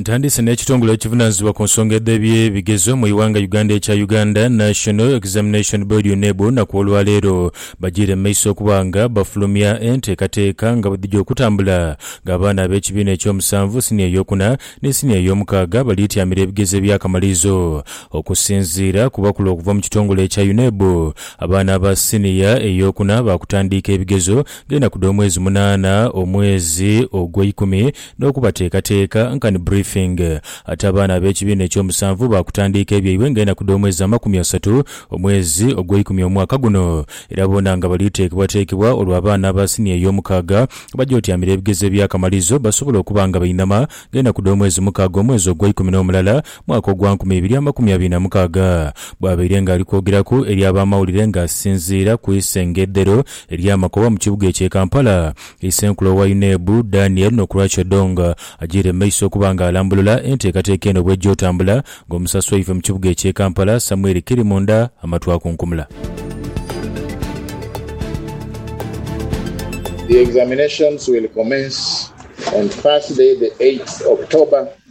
Ntandiise n'ekitongole ekivunaanyizibwa ku nsonga edh'ebyebigezo mu ighanga Uganda ekya Uganda National Examination Board, UNEB, na ku olwaleero bajiire mu maiso okuba nga bafulumya enteekateeka nga bwedhija okutambula nga abaana ab'ekibiina eky'omusanvu, siniya ey'okuna ni siniya ey'omukaaga baliityamira ebigezo eby'akamalirizo. Okusinziira ku bakulu okuva mu kitongole ekya UNEB, abaana aba siniya ey'okuna baakutandiika ebigezo g'enaku dh'omwezi munaana, omwezi ogw'eikumi, n'okubateekateeka, nkani briefing. Ate abaana ab'ekibiina eky'omusanvu baakutandiika ebyaibwe ng'enaku dh'omwezi amakumi asatu, omwezi ogw'eikumi omwaka guno. Era boona nga bali teekebwateekebwa olwo abaana aba siniya ey'omukaaga baje otyamira ebigezo eby'akamalirizo basobole okuba nga bainama ng'enaku dh'omwezi mukaaga omwezi ogw'eikumi n'omulala, mwaka ogwa nkumi ibiri amakumi abiri na mukaaga, bw'abaire ng'ali kwogeraku eri ab'amawulire ng'asinziira ku isengedhero ery'amakoba mu kibuga eky'e Kampala, Isenkulu owa UNEB, Daniel Nokurach Odong agiire mu maiso okuba ng'alambulula enteekateeka eno bw'ejja otambula ng'omusasi waife mu kibuga eky'e Kampala, Samuel Kirimunda amatu akunkumula. The examinations will commence on Thursday the eighth October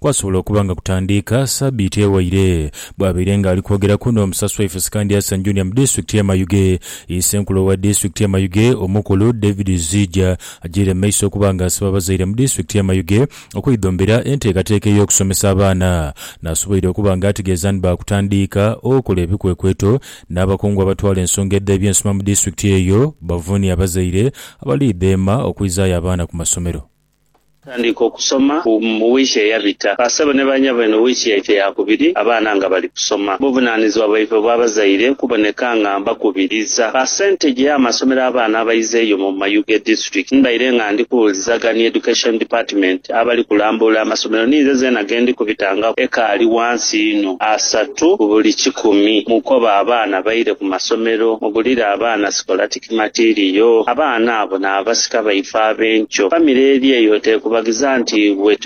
Kwasobola okuba nga kutandiika sabiiti ewaire. Bwabaire nga ali kwogeraku n'omusasi waife Sikandi Hassan Junior mu disitulikiti ye Mayuge, ye senkulu owa disitulikiti ye Mayuge omukulu David Zijja agyeire mu maiso okuba nga asaba abazaire mu disitulikiti ye Mayuge okwidhombera enteekateeka ey'okusomesa abaana nasoboire okuba nga ategeeza ni baakutandiika okola ebikwekweto n'abakungu abatwala ensonga edh'ebyensoma mu disitulikiti eyo bavuunye abazaire abaliidheema okwizaayo abaana ku masomero. Tandika okusoma mu wiiki eyabita. Ba sebo ne ba nyabo eno wiiki yaife ya kubiri abaana nga bali kusoma. Buvunanizibwa bwaife obw'abazaire kuboneka nga mbakubiriza. Ba sente gye amasomero abaana abaiza eyo mu mayu ge district mbaire nga ndi kuwulizagha ni Education Department abali kulambuula amasomero ninze zeena ge ndi kubitangako ekaali wansi inho asatu ku buli kikumi. Mukobe abaana baire ku masomero. Mugulire abaana scholartic. Matiiriyo, abaana abo n'abasika baife ab'enkyo. Famire eri eyo teekubaghiza nti bwe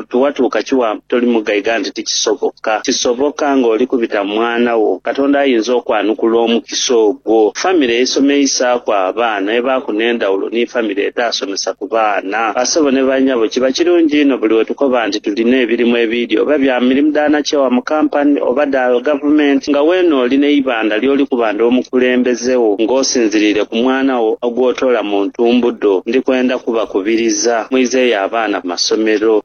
tiwatuuka kiwampa toli mugaiga nti tikisoboka. Kisoboka ng'oli kubita mu mwana wo. Katonda ayinza okwanukula omukisa ogwo. Famire eisomeisaaku abaana ebaaku n'endhawulo ni famire etaasomesaku. ku baana. Basebo ni banyabo, kiba kirungi inho buli we tukoba nti tulina ebirimu ebiidhi oba bya mirimu dha nakyewa mu kampani oba dha gavumenti nga weene oli n'eibandha ly'oli kuba ndi omukulembeze wo ng'osinziriire ku mwana wo gw'otoola mu ntumbudho. Ndi kwenda kubakubiriza mwizeeyo abaana mu masomero.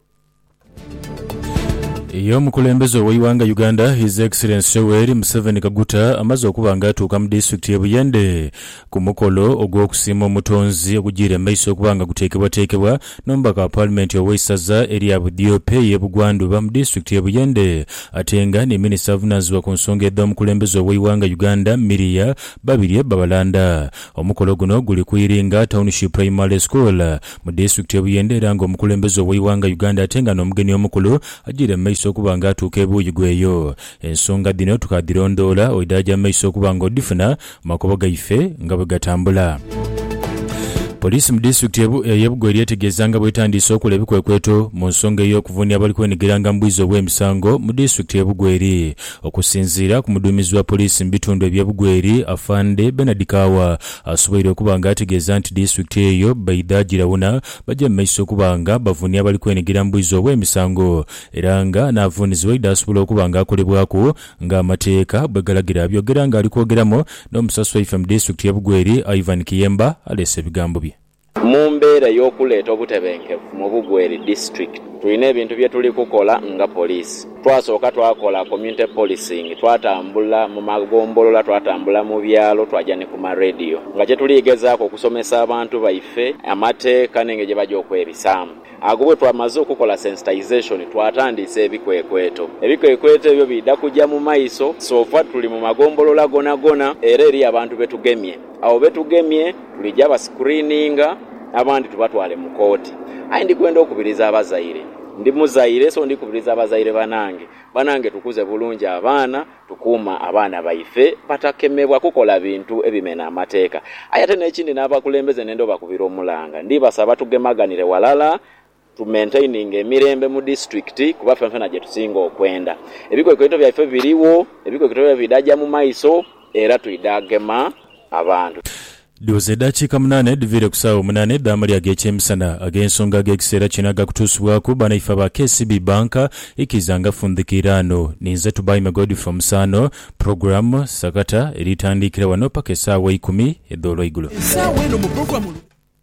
Ye omukulembeze ow'eighanga Uganda His Excellency Yoweri Museveni Kaguta amaze okuba nga atuuka mu disitulikiti y'e Buyende ku mukolo ogw'okusiima Omutonzi ogujiire mu maiso okuba nga guteekebwateekebwa n'omubaka wa Paalimenti ow'eisaza erya Budiope y'e Bugwandhuba mu disitulikiti y'e Buyende ate nga ni Minisita avunaanyizibwa ku nsonga edh'omukulembeze ow'eighanga Uganda Miria Babirye Babalanda. Omukolo guno guli ku Iringa Township Primary School mu disitulikiti ye Buyende era nga omukulembeze oweighanga Uganda ate nga n'omugeni omukulu agyiire mu maiso okuba nga atuuka ebuuyi gweeyo. Ensonga dhino tukadhirondoola oidhaaja mu maiso okuba nga odhifuna mu makubo gaife nga bwegatambula. Poliisi mu disitulikiti ye Bugo eryetegeeza nga bwetandiise okola ebikwekweto mu nsonga ey'okuvunia abali kwenigiranga mu bwizi obw'emisango mu disitulikiti ye Bugo eri Okusinziira ku muduumizi wa poliisi mu bitundu ebye Bugweri, Afande Bernard Kaawa, asoboire okuba nga ategeeza nti disitulikiti eyo baidha girawuna baje mu maiso okuba nga bavunia abali kwenhigira mu bwizi obw'emisango era nga n'avuunizibwa aidha asobola okuba nga akolebwaku nga amateeka bwegalagira. Abyogera nga ali kwogeramu n'omusasi waife mu disitulikiti ye Bugweri, Ivan Kiyemba aleese ebigambo bye. Mu mbeera ey'okuleeta obutebenkevu mu Bugu eri District, tulina ebintu bye tuli kukola nga poliisi. Twasooka twakola community policing, twatambula mu magombolola, twatambula mu byalo, twaja ni ku ma radio nga kye tuli gezaaku okusomesa abantu baife amateeka n'engeri gye baja okwebisaamu. Agho bwe twamaze okukola sensitization, twatandiisa ebikwekweto. Ebikwekweto ebyo biidha kuja mu maiso, sofa tuli mu magombolola gonagona era eriyo abantu be tugemye. Agho be tugemye tuligya basikuriininga, abandi tubatwale mu kooti. Aye ndi kwenda okubiriza abazaire. Ndi muzaire so ndi kubiriza bazaire banange. Banange tukuze bulungi abaana, tukuume abaana baife batakemebwa kukola bintu ebimena amateeka. Aye ate n'ekindi n'abakulembeze nenda obakubira omulanga. Ndibasaba tugemaganire walala Tu maintaininga emirembe mu disitulikiti kuba fenfena gye tusinga okwenda. Ebikwekweto byaife birigho, ebikwekweto byaife bidha ja mu maiso era twidha gema abantu. Dhuuza edhakiika munaana edhiviire ku saagho munaana edh'amalya ag'ekyemisana. Ag'ensonga ag'ekiseera kino agakutuusibwaku banaife aba KCB Bank ikiiza nga fundhika iraano. Ninze Tubaime Godfrey Omusaano. Program, Sakata, eri tandiikira wano paka esaawa eikumi edh'olweigulo.